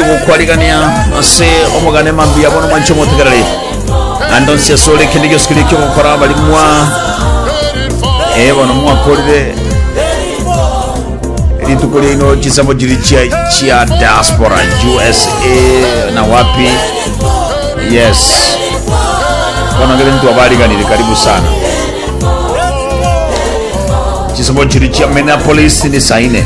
gokwarigania ase omogane mambia bono mwanche omotegereri ando nsi ase ore kende gionsi kiri kiogokora abarimwa ee bono mwakorire rituko riaino chisemo chiri chia chia diaspora usa na wapi yes bono ngere ntu abariganire karibu sana chisemo chiri chia minneapolis ni saine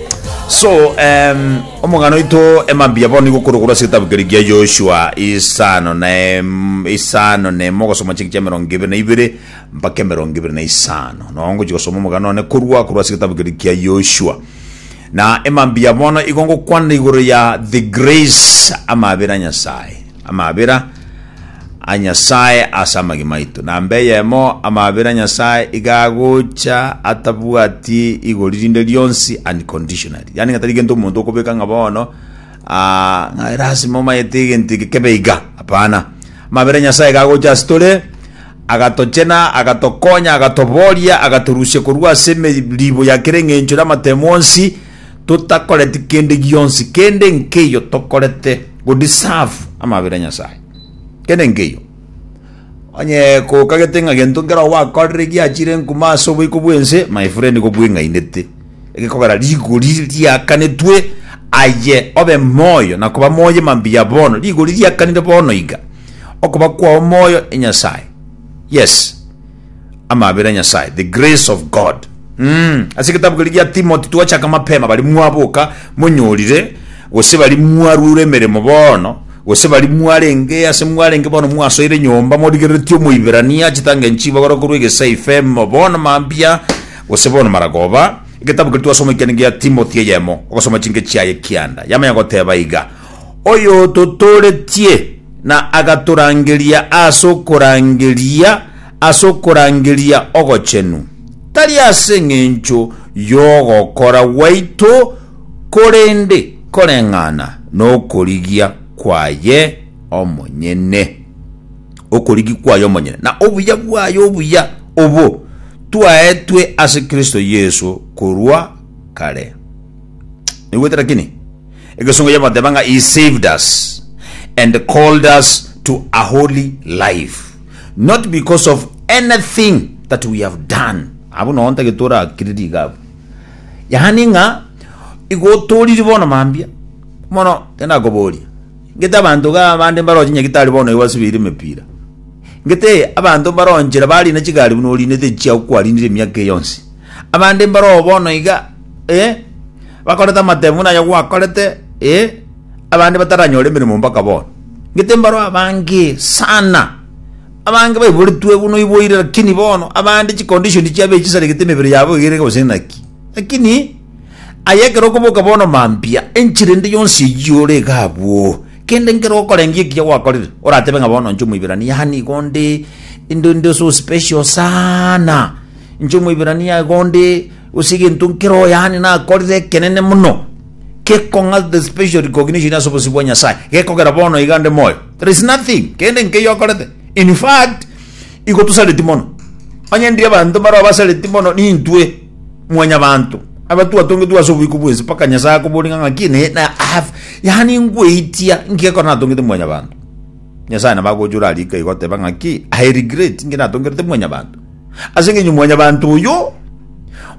So, em, omogano oito emambia bono nigo okorokoro ase egetabu keria kia Joshua isano na em- isano na emo ogosoma chingaki chia emerongo ebere na ibere mpaka emerongo ebere na isano. Nao ngochi gosoma omogano one korwa korwa ase egetabu keria kia Joshua. Na emambia bono igo ngokwana igoro ya the grace amaabera Nyasaye. amabera a Nyasae ase amagima aito, na mbe eyemo amabera a Nyasae iga agocha atabwati igori rinde rionsi unconditionally. Yaani ng'a tari gento omonto okobeka ng'a bono ah, ng'a lasima omayete egento eke kebe iga, hapana. Amabera a Nyasae iga agocha ase tore, agatochena, agatokonya, agatoboria, agatorusia korwa ase emeribo ya kera eng'encho na amatemo onsi, totakoreti kende gionsi, kende nkeiyo tokorete go deserve amabera a Nyasae, kende nkeiyo. Onye kokagete ng'a gento nkero gwakorire giachire enkumo ase oboiko bw'ense, my friend gobweng'ainete, egekogera rigori riakanetwe aye obe moyo na koba moyo mambia bono, rigori riakanire bono iga, okoba kwao moyo e Nyasae. Yes. Amabera a Nyasae, the grace of God. Mm, ase egetabu keria gia Timoti twachaka mapema, bari mwaboka monyorire, gose bari mwaruire emeremo bono, gose bari mwarenge ase mwarenge bono mwasoire nyomba morigereretie Omoiberania achitange nchibagora korwa egesaife emo bono mambia gose bono maragoba. Egetabu keria twasoma ekiane gia Timoti eyemo, ogosoma chinke chiaye kianda yamanya goteba iga, oyototooretie na agatorangeria ase okorangeria ase okorangeria ogochenu, tari ase engencho y'ogokora gwaito, korende koreng'ana nokorigia kwaye omonyene. Okorigia kwaye omonyene, na obuya bwaye obuya obo twaetwe ase Kristo Yeso korwa kare. Naigwete? Lakini Egesongo yagoteba ng'a He saved us and called us to a holy life, not because of anything that we have done. Abwo nao ntagete torakiriri iga abwo. Yaani ng'a igo toriri bono mambia. Mono tindakoboria. Ngete abanto iga abande mbaroche nyagitari bono igo asubire emepira. Ngete abanto mbaronchire barina chigari buna orinete chiago kwarindire emiaka eye yonsi. Abande mbaroo bono iga ee, bakorete amatemu buna onye gwakorete, ee, abande bataranyore emeremo mpaka bono. Ngete mbaro abange sana, abange baiboretwe buna oiboire lakini bono abande chicondition chiabo echi chisaregete emebere yabo iga erenge gose naki. Lakini aye ekero okoboka bono mambia, enchera ende yonsi eyio ore iga abwo, kende nkere okorengia ekiya gwakorire, oratebe ng'a bono inche Omoiberania yaani igo nde inde inde so special sana, inche Omoiberania igo nde. Gose egento nkere oy'aane nakorire ekenene mono, gekong'a the special recognition ase obosio bwa Nyasae, gekogera bono iga nde moyo. There is nothing kende nkeyio akorete. In fact, igo tosareti mono. Onye ndiri abanto mbare abasareti mono nintwe mwanyabanto, aba twatongetwe ase oboiko bw'ense mpaka Nyasae akoboria ng'a ng'aki ne, na I have, yaani nkweitia inki ekero natongete mwanyabanto. Nyasae nabo agocha ore ariko iga oteba ng'aki, I regret inki natongerete mwanyabanto. Ase engencho mwanyabanto oyo,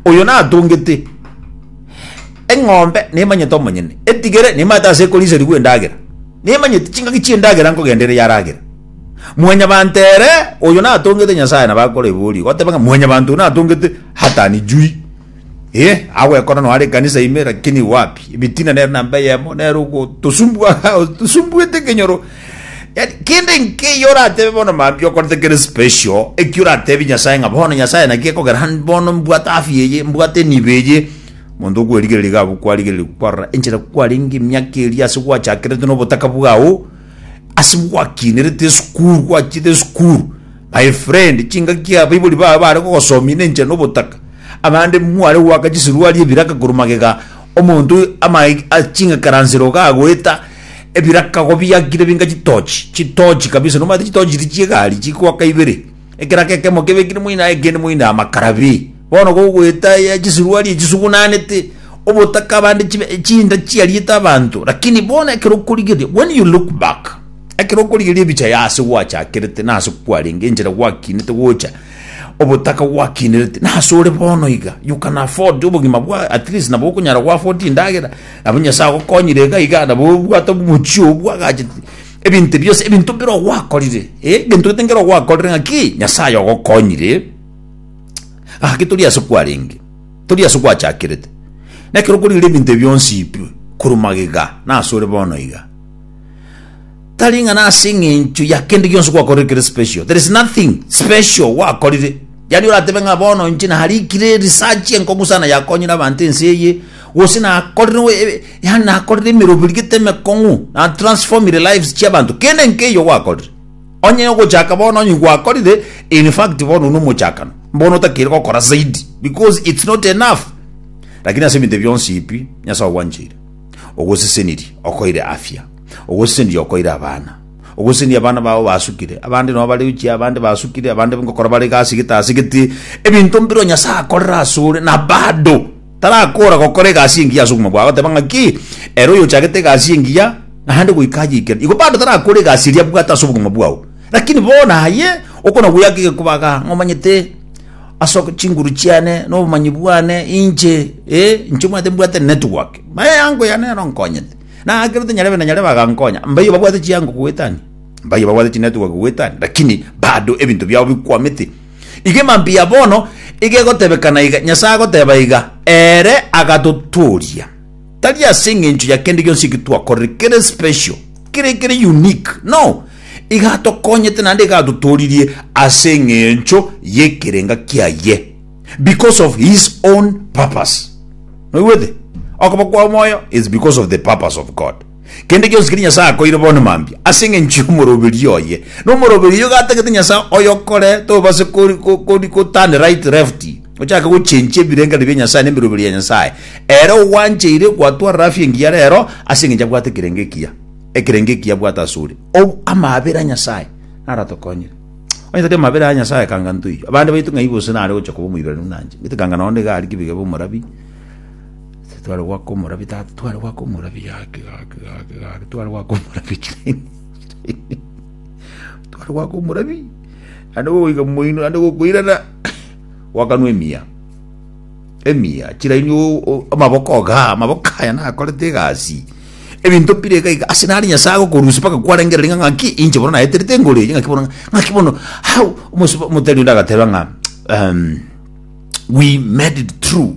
oyo natongete eng'ombe nemanyete omonyene, etigere nemanyete ase ekorisarigwa endagera, nemanyete chingaki chi'endagera nkogenda ere yaragera. Mwanyabanto ere, oyo natongete Nyasae nabo akoreboria, goteba ng'a mwanyabanto oyo natongete hatanijuri. Eh, agwekora no are kanisa ime lakini wapi? Ebitina nero namba yemo nero gotosumbua tosumbuete kenyoro. Yaani kende nke yora atebe bono mambi okorete kere special ekiura atebi Nyasaye nga bono Nyasaye naki ekogera han bono mbwate afya eye mbwate nibe eye Monto okwerigereria gabu kwarigereria kwarora enchera kwarenge emiaka eria ase gwachakerete no botaka bwao ase gwakinerete esukuru gwachiete esukuru My friend, chingaki abaibori babo bare gogosomia nenchera nobotaka. Abande mware goaka chisuruari ebiraka korwa magega, omonto amaeg a ching'ekaransero iga agoeta ebiraka igo biakire binga chitochi, chitochi kabisa. Nomanyete chitochi chiria chi'egari chigoaka ibere, ekeraka ekemo kebekire moino aye ekende moino amakara bii. Bono gogoeta ya chisiruari echisugunanete obotaka abande chibe chinda chiariete abanto lakini bono ekero okorigeria when you look back ekero okorigeria ebicha ya ase gwachakerete na ase kwarenge enchera gwakinete gocha obotaka gwakinerete na ase ore bono iga you can afford obogima bwa at least nabo okonyara go afford endagera nabo nyasae agokonyire iga iga nabo obwate omochi oo bwagachete ebinto ebi bionsi ebinto bire ogwakorire eh ebinto gete nkere ogwakorire ng'aki nyasae ogokonyire Gaki tori ase kwarenge, tori ase gwachakerete. Nekero kori ore ebinto ebi bionsi ipirwe korwa magega, nase ore bono iga. Tari ng'a nase eng'encho ya kende gionsi gwakorire kere special. There is nothing special gwakorire. Yaani oratebe ng'a bono inche narikire research enkong'u sana yakonyire abanto ense eye, gose nakorire o- e- e- yaani nakorire emeroberi gete emekong'u, na transformire lives chiabanto. Kende nkeiyo gwakorire. Onye ogochaka bono onye gwakorire in fact bono buna omochakano bono otakeire gokora zaidi because it's not enough lakini ase ebinto bionsi ebi Nyasaye ogwancheire ogosesenirie okoire afya ogosesenirie okoire abana ogosesenirie abana bao basukire abande nabo bare uchi abande basukire abande ngokora bare egasi gete ase gete ebinto mbiro Nyasaye akorera asore na bado Tarakoora gokora egasi engiya ase obogima bwao, agoteba ng'aki, Ere oyochagete egasi engiya, naende goika ayeikere. Igo bado tarakoora egasi eria abwate ase obogima bwao. Lakini bono aye okonagoyaka egekobaga, ng'a omanyete ase chinguru chiane, na obomanyi bwane, inche, ee, inche omanyete mbwate network. Eango yane nero nkonyete. Na ekero tinyarebe na nyarebe agankonya. Mbaiyo babwate chiango goetania? Mbaiyo babwate chinetwork goetania? Lakini bado ebinto biao bikwamete. Igima mbuya bono igegotebekana iga, Nyasae agoteba iga, Ere agatotooria, tari ase engencho ya kende gionsi eki twakorire kere special, kere kere unique, no, iga atokonyete naende iga atotooririe ase engencho y'ekerenga kiaye, because of his own purpose. Noigwete? Okoba kwa moyo is because of the purpose of God. Kende gionsi keria Nyasae akoeire bono mambia ase engencho y'omoroberio oye. Na omoroberio oyio gatagete Nyasae oyokore tobase goturn right left, ochake gochenchia ebirengererio bia Nyasae na emeroberio ya Nyasae. Ere ogwancheire gwatwarera afya engiya rero ase engencho abwate ekerengo ekiya, ekerengo ekiya abwate asore. Ou amabera Nyasae naratokonyire. Onye tari amabera ya Nyasae kanga ntoiyo. Abande baito ng'ai gose nare gocha koba omoiberanu nanje. Gete kanga nonya nigo aria kibiga be omorabi. Ase tware goaka omorabio tata, tware goaka omorabio gaki gaki gaki gaki, tware goaka omorabio chirenge chirenge, tware goaka omorabio, naende gogoika moino, naende gokoirana, goakanwa emiya, emiya, chiraini o- o- amaboko iga, amaboko aya nakorete egasi, ebinto bire iga iga, ase nare Nyasae agokorusia mpaka kwarengereri ng'a ng'aki inche bono naeterete engoro eye, ng'aki bono ng'a- ng'aki bono how, omosubaa, omotari onde agateba ng'a we made it true.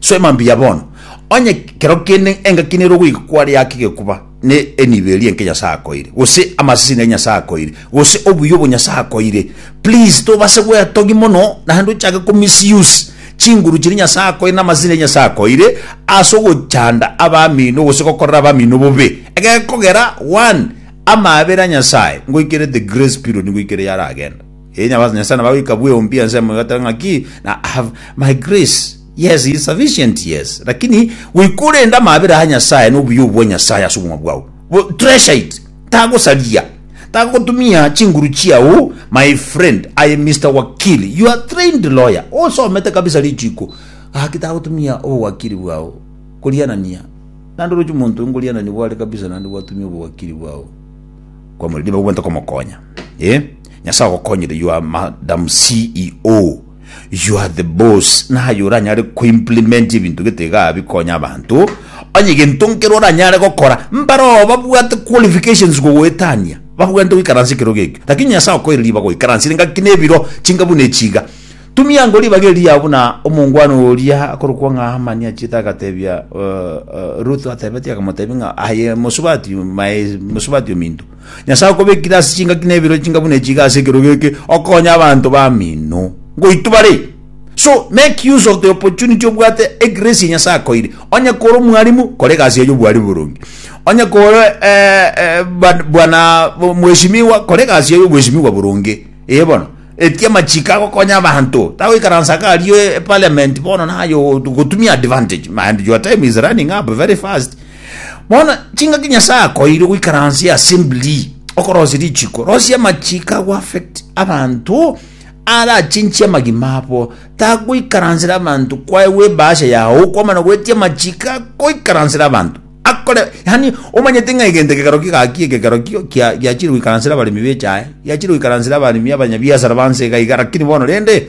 Soma mbuya bono. Onye kero kende engaki nere ogoika kware yake egekuba, ne enibo eria enke Nyasae akoeire, gose amasese nere Nyasae akoeire, gose obuya obo Nyasae akoeire, please tobase gwetogia mono naende ochake ko misuse chinguru chiria Nyasae akoeire na amasese nere Nyasae akoeire ase ogochanda abamino gose gokorera abamino bobe. Egekogera one, amaabera a Nyasae ngoikere the grace period ngoikere yaragenda. Ee, Nyabato Nyasae nabagoika bweompia ensemo egoetera ng'aki, na I have my grace, yes, is sufficient, yes. Lakini goika orende amaabera a Nyasae na obuya obwa Nyasae ase obogima bwao, bo- treasure it, tagosaria, tagotumia chinguru chiao, my friend, I am Mister Wakili, you are trained lawyer, osomete kabisa richiiko, gaki tagotumia obowakiri bwao korianania, naende oroche omonto oyio nkorianania bware kabisa naende gwatumia obowakiri bwao kwa moriri nigo bwenta komokonya, ee. Nyasae agokonyire you are madam CEO you are the boss naye oranyare ko implement ebinto gete iga bikonya abanto onye gento nkere oranyare gokora mbaroo babwate qualifications gogoetania babwante goikaransa ekero gekio lakini Nyasae okoire ribaga oikaranse engaki na ebiro chinga buna echiga tumia ango ribaga eri yao buna omongwana oria akorokwa ng'a Hamani achiete agatebia uh, uh, Ruth atebetie akamotebia ng'a aye mosubati my mosubati ominto Nyasae okobekire ase chingaki na ebirori chinga buna echi iga ase ekerogo eke, okonya abanto bamino ngoitwa bare. So, make use of the opportunity obwate egrace ya Nyasae akoire. Onye kore omwarimu, kora egasi yaye obwarimu boronge. Onye kore eh, eh, ba- bwana bo- mweshimiwa, kora egasi yaye obweshimiwa boronge. Ee bono, etia amachiko agokonya abanto. Tagoikaransa iga aria e- eparliament bono naye o- gotumia advantage. And your time is running up very fast. Bono chingaki Nyasae akoeire goikaransia assembly okorosia richiko, rosia amachiko ago affect abanto arachinchie amagima abo, tagoikaransera abanto kwaegwa ebahasha yao kwamana goetia amachiko agoikaransera abanto akore yani omanyete ng'a egento ekekero kigaki ekekero kio kia- giachire goikaransera abaremi bechae giachire goikaransera abaremi abanyabiasara banse iga iga lakini bono rende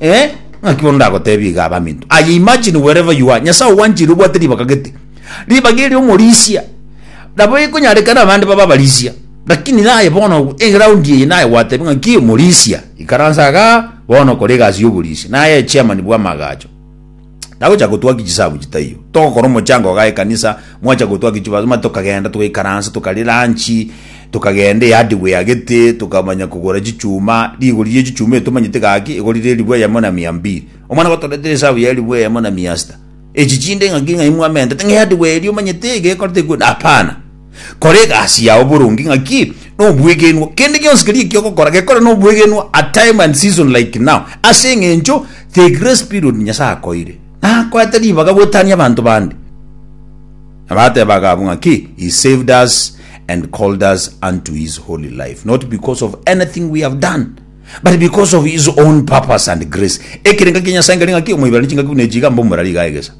eh, ng'aki bono ndagotebie iga abaminto aye imagine wherever you are nyasaye ogwanchire obwate ribaga gete ribaga eri omorisia nabo ekonyarekana abande baba abarisia lakini naye bono eground eye naye gwatebia ng'aki omorisia ikaransa iga bono kora egasi ya oborisia naye chairman bwa amagacho Tagocha gotwa ki chisabu chitaiyo. Togokora omochango iga ekanisa, mwacha gotwa ki chibasima tokagenda togaikaransa tokaria lunch, tokagenda ehardware agete tokamanya kogora chichuma, rigori rie chichuma eri tomanyete gaki egorire elifu eyemo na mia mbili. Omwana gotoretera esabu ya elifu eyemo na mia sita. Echi chinde ng'aki ng'ai mwamentete ng'a ehardware eria omanyete iga ekorete ekwo hapana. Kora egasi yao boronge ng'aki nobwegenwa. Kende gionsi keria ekiogokora gekore nobwegenwa at time and season like now. Ase eng'encho the grace period Nyasae akoire nakoete ribaga goetania abanto bande. Nabatebaga abwo ng'aki he saved us and called us unto his holy life not because of anything we have done but because of his own purpose and grace. Ekerenga kia Nyasae nkeri ng'aki omoiberani chingaki buna echiga mbe omorari iga egesa.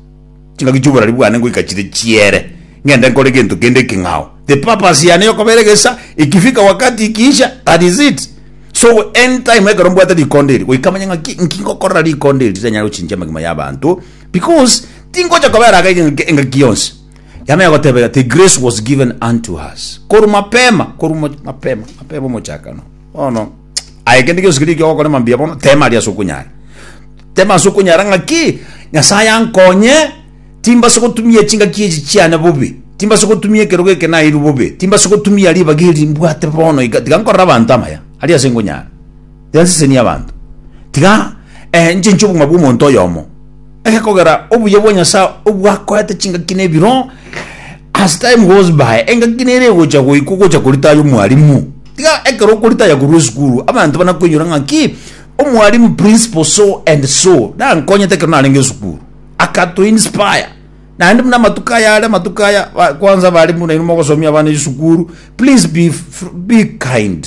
Chingaki chi'oborari bwane ngoika chire chiere, ng'ende nkore gento kende ekeng'ao. The purpose yane yokobera egesa ikifika wakati ikiisha, that is it. So anytime ekero mbwate rikondo eri, goika manye ng'aki nki ngokorera rikondo eri riranyare gochinchia amagima y'abanto, because tingocha kobera aka engaki engaki yonsi. Yane yagotebera ati grace was given unto us, korwa mapema, korwa mapema, mapema omochakano. Bono. Aye kende gionsi keria ekiogokora ime mbuya bono, teema aria ase okonyara. Teema ase okonyara ng'aki, Nyasae ankonye, timbase gotumia chingaki echi chiane bobe, timbase gotumia ekerogo eke naeirwe bobe, timbase gotumia ribaga eri mbwate bono iga, tiga nkorere abanto amaya, aria ase nkonyara. Tiga nsesenie abanto. Tiga eh, nchenche obong'ina bw'omonto oyomo. Ere kogera obuya bwa Nyasae obwakoete chingaki na ebiro, as time goes by, engaki nere egocha goika ogocha koritaya omwalimu. Tiga ekero okoritaya korwa esukuru, abanto bana koinyora ng'aki, omwalimu principal so and so, nankonyete ekero narenge esukuru. Akato inspire. Naende buna amatuko aya are amatuko aya, ba- kwanza abalimu nainwe mogosomia abana esukuru, please be, f- be kind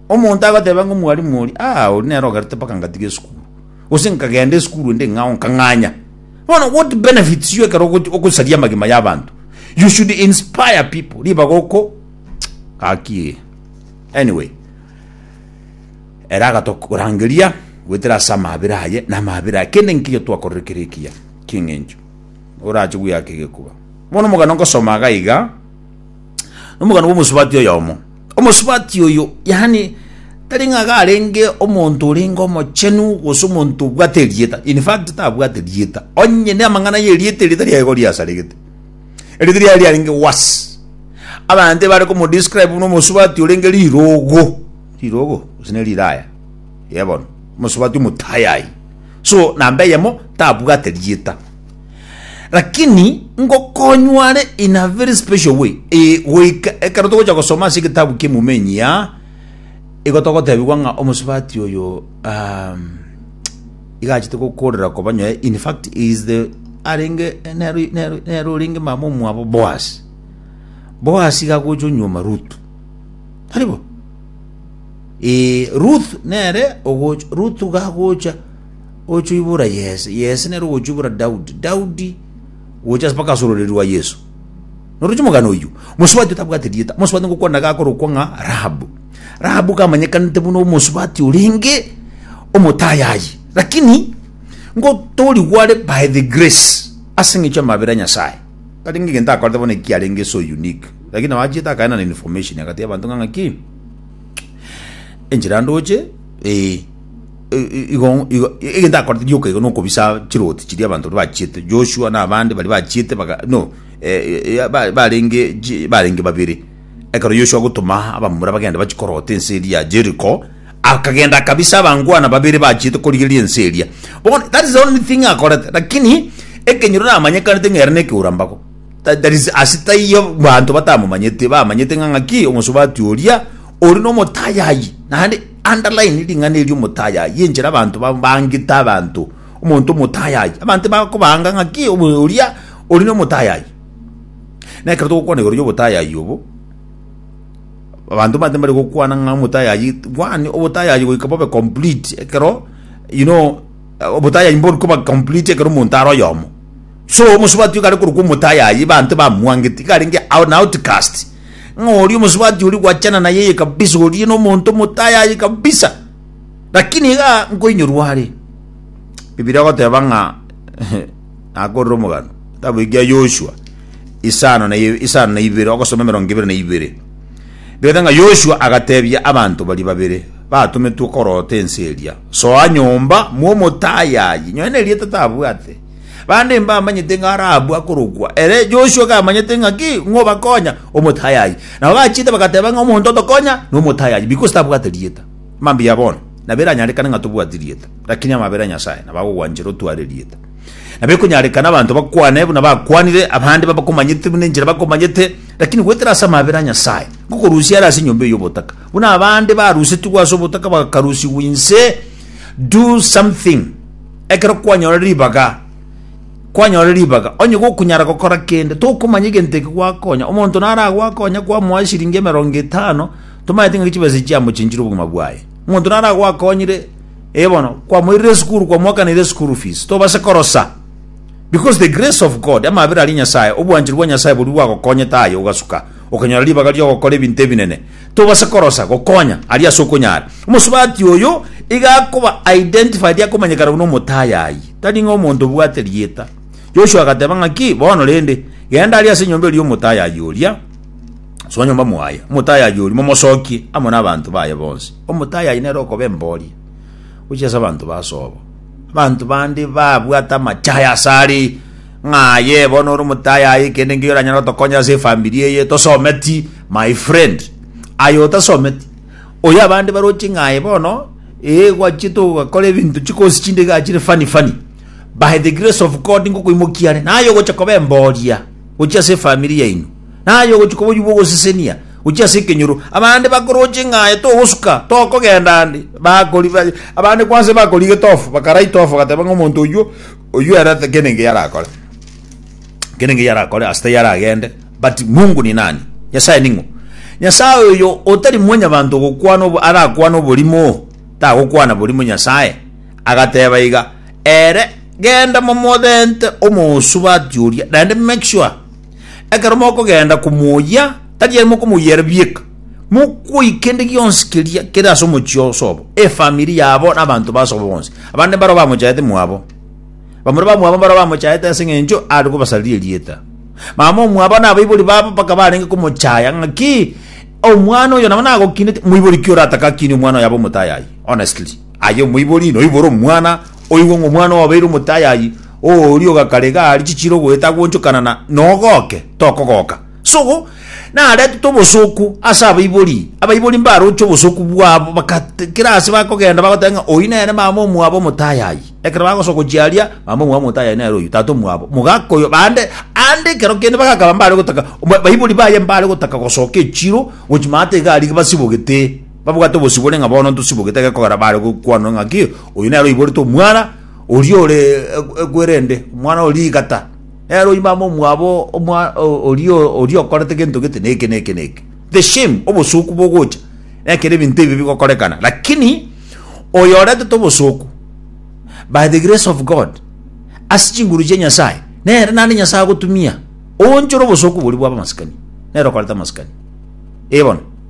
Omonto agoteba ng'a omwalimu oria, Ah, oria nere ogerete mpaka ngatiga esukuru, gose nkagenda esukuru ende eng'ao nkang'anya. Bono what benefits you ekero ogo- ogosaria amagima y'abanto? You should inspire people, ribaga oko gaki. Anyway, ere agatorangeria goetera ase amaabera aye na amaabera aye, kende nkiya twakorire kere ekiya, king'encho orache gweaka egekuba. Bono omogano nkosoma iga iga, nomogano bw'omosubati oyomo. Omosubati oyo, yaani, tari ng'a iga arenge omonto orenge omochenu, gose omonto obwate erieta, in fact, tabwate rieta, onye namang'ana y'erieta erio tari aye igo riasaregete, erieta riaye riarenge worse. Abanto ebare komodescribe buna omosubati orenge rirogo, rirogo, gose ne riraya, yebono, omosubati omotayayi. So, namba eyemo, tabwate rieta. Lakini ngokonywa are in a very special way. E, goika ekero togocha gosoma ase egetabu kiemumenyi ya igo togotebigwa ng'a omosubati oyo um, igachete gokorera koba nyoe in fact he is the arenge nero nero nero orenge mama omwabo Boaz Boaz gagocha onyuoma Ruth taribo e, Ruth nere ogocha Ruth gagocha Ogochwibora Yese, Yese nere ogochwibora Daudi, Daudi gocha ase mpaka ase ororeri rwa Yeso. Noroche omogano oyio, mosubati otabwate rieta, mosubati ngokwana gakorokwa ng'a Rahabu. Rahabu kamanyekanete buna omosubati orenge omotayayi, lakini ngotorigwa are by the grace, ase eng'encho y'amabera a Nyasaye. Tarenge egento akorete bono ekio kiarenge so unique, lakini nabo achiete akaenana information agatebia abanto ng'a ng'aki, enchera ndoche, ee. i- igo igo egento akorete rioka igo nokobisa chiroti chiria abanto baria bachiete Joshua na abande baria bachiete baga no eh, eh, ba- barenge ji- barenge babere ekero Yoshua agotoma abamura bagende bachie korota ense eria ya Jericho akagenda akabisa abangwana babere bachiete korigereria ense eria bono that is the only thing akorete lakini ekenyoro namanyekanete ng'a ere na ekeura mbago Tha- that is ase taiyo banto batamomanyete bamanyete ng'a ng'aki omosubati oria ore na omotayayi naende Underline ring'ana eri omotayayi enchera abanto babangete abanto omonto omotayayi. Abanto bakobanga ng'aki oria ori nomotayayi. Nekero togokwana igoro yobotayayi obo, abanto mbante mbare gokwana ng'a omotayayi one obotayayi goika bobe complete ekero you know obotayayi mborikoba complete ekero omonto are oyomo. So omosubati ogare korokwa omotayayi ebanto bamwangeti igarenge an outcast ng'a oria omosubati oria gwachana naye eye kabisa oria nomonto omotayayi kabisa lakini iga nkoinyorwa are Bibilia egoteba ng'a nakorire omogano kitabu ekia Yoshua isano na isano na ibere ogosoma emerongo ebere na ibere bigete ng'a Yoshua agatebia abanto bari babere batometwe korota ense eria soa nyomba mwa omotayayi nyoe nerieta tabwate Bande mbamanyete ng'a Rahabu akorokwa. Ere Joshua kamanyete ng'a ki ng'obakonya omotayayi. Nabo bachiete bagateba ng'a omonto otokonya nomotayayi, because tabwate rieta. Mambia bono, nabiranyarekane ng'a tobwati rieta, lakini amabera a Nyasaye nabo agogwanchera otware rieta. Nabo ekonyarekana abanto bakwane buna bakwanire, abande babakomanyete buna enchera bakomanyete, lakini goetera ase amabera a Nyasaye, ngokorusia are ase enyomba eye y'obotaka. Buna abande barusetigwe ase obotaka bakarusigwa inse, do something. Ekero kwanyora ribaga, kwanyora ribaga, onye gokonyara gokora kende, tokomanya egento eke gwakonya. Omonto naro agwakonya kwamoa eshiringi emerongo etano, tomaete ng'aki chibesa echi chiamochenchire obogima bwaye. Omonto naro agwakonyire, eh bono, kwamoirire esukuru, kwamoakaneirie school fees, tobasa korosa. Because the grace of God, amabera aria Nyasaye, obwanchani bwa Nyasaye boria bwagokonyete aye ogasuka, okanyora ribaga riogokora ebinto ebinene. Tobasa korosa gokonya aria ase okonyara. Omosubati oyo iga akoba identified akomanyekana buna omotayayi, tari ng'a omonto obwate rieta. Joshua agateba ng'aki, Bono rende, genda aria ase enyomba eria omotayayi oria, soa nyomba mwaye, omotayayi oria momosokie amo nabanto baye bonsi. Omotayayi nere okoba emboria gochia ase abanto basobo. Abanto bande babwate amache aya asare. Ng'a aye bono ore omotaai aye kende ngeyo oranyare gotokonya ase efamiri eye tosometi my friend. Aye otasometi oyo abande baroche ng'a aye bono ee gwachiete ogakora ebinto chikosi chinde igaa chire funny funny by the grace of God ngokoimokia are naye ogocha koba emboria gochia ase efamiri yaino naye ogochi koba oywo bwa ogosesenia gochia ase ekenyoro abande bakoroche ng'a aye togosuka tokogenda ande bakori abande kwanse bakorigete off bakaraita off bagateba ng'a omonto oywo oyio ere kende engiya arakore kende engiya arakore ase taiyo aragende but mungu ni nani nyasaye ning'o nyasaye oyo otari mwanyabanto ogokwana obo arakwana oborimo tagokwana borimo nyasaye agateba iga ere genda momobente omosubati oria naende make sure Ekero mokogenda komoyia, tari aye mokomoyia ere bieka, mokoyia kende gionsi keria kere ase omochie o Sobo, efamiri yabo na abanto ba Sobo bonsi. Abande mbaro bamochaete mwabo. Bamura ba mwabo mbaro bamochaete ase engencho are kobasariria erieta. Mama o mwabo na abaibori babo mpaka barenge komochaya ng'aki, Omwana oyo nabo nagokinete, moibori ki oratake akine omwana oyo abe omotayayi? Honestly. Aye omoibori noibore omwana, oigwe ng'a omwana obabeire omotayayi, oooria ogakarega aria chichire ogoeta agoonchokana na nogoke, tokogoka. Sogo, naretete obosooku ase abaibori, abaibori mbaroche obosooku bwabo, baka kera ase bakogenda bagoteba ng'a oyio nere mama omwabo omotayayi. Ekero bagosoka gochia aria, mama omwabo omotayayi nere oyio, tata omwabo, mogaka oyo, bande, ande ekero kende bagakaba mbare gotaka, oba baibori baye mbare gotaka gosoka echiro gochia maate iga aria basibogete. Babwate obosibore ng'a bono ntosibogete gekogera baare gokwanwa ng'aki, Oyo nere oiborete omwana oria ore ekwerende, omwana oria rigata, nere oimame omwabo omwa oria oria okorete gento gete na eke na eke na eke. The shame, obosuku bogocha nekero ebinto ebi bigokorekana. Lakini oyo oretete obosuku by the grace of God ase chinguru chia Nyasaye, nere naende Nyasaye agotumia oonchore obosuku boria bw'abamasikani, nere okorete amasikani. Ee bono.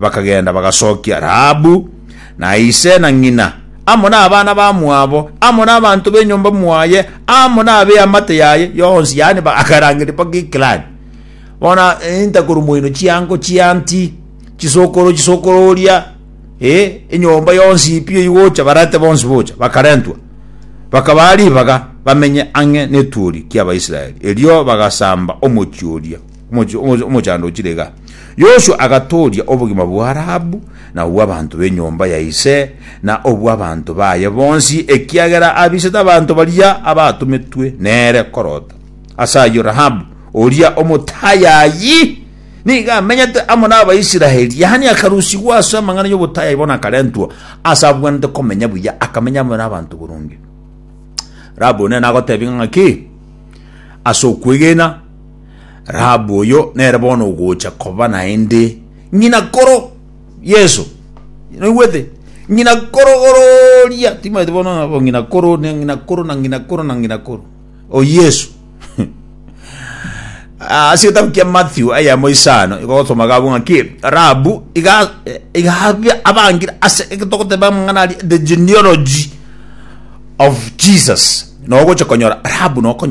bakagenda bagasokia Rahabu, na ise na ng'ina, amo nabana bamwabo, amo nabanto b'enyomba mwaye, amo nab'eamate yaye yonsi, yaani bagarangeria mpaka eklani. Bono inta korwa moino chiango chianti, chisokoro chisokoro oria, eh, enyomba yonsi ipi oigocha barate bonsi bocha, bakarentwa. Bakabaa ribaga bamenye ang'e networi ki'Abaisraeli, erio bagasamba omochie oria. omoch- omoch- omochando ochire iga. Yoshua agatooria obogima bwa Rahabu, na obw'abanto b'enyomba ya ise, na obw'abanto baye bonsi, ekiagera abisete abanto baria abatometwe nere korota. Ase ayio Rahabu, oria omotayayi, nigo amenyete amo n'Abaisraeli, yaani akarusigwa ase amang'ana y'obotayayi bono akarentwa ase abwenerete komenya buya, akamenya amo n'abanto boronge. Rahabu nere nagoteebia ng'a ki? Ase okwegena Rahabu oyo nere bono ogocha koba naende ng'ina koro Yeso. Noigwete? Ng'ina koro ororia, timaete bono nabo ng'ina koro, ne ng'ina koro, na ng'ina koro, na ng'ina koro. O Yeso. Ah, Ase egetabu kia Matthew ayamo isano, igogosoma gabo ng'a ki, Rahabu iga eh, iga abia- abangire ase egitogoteba amang'ana aria, the genealogy of Jesus. Nogocha konyora Rahabu nokonya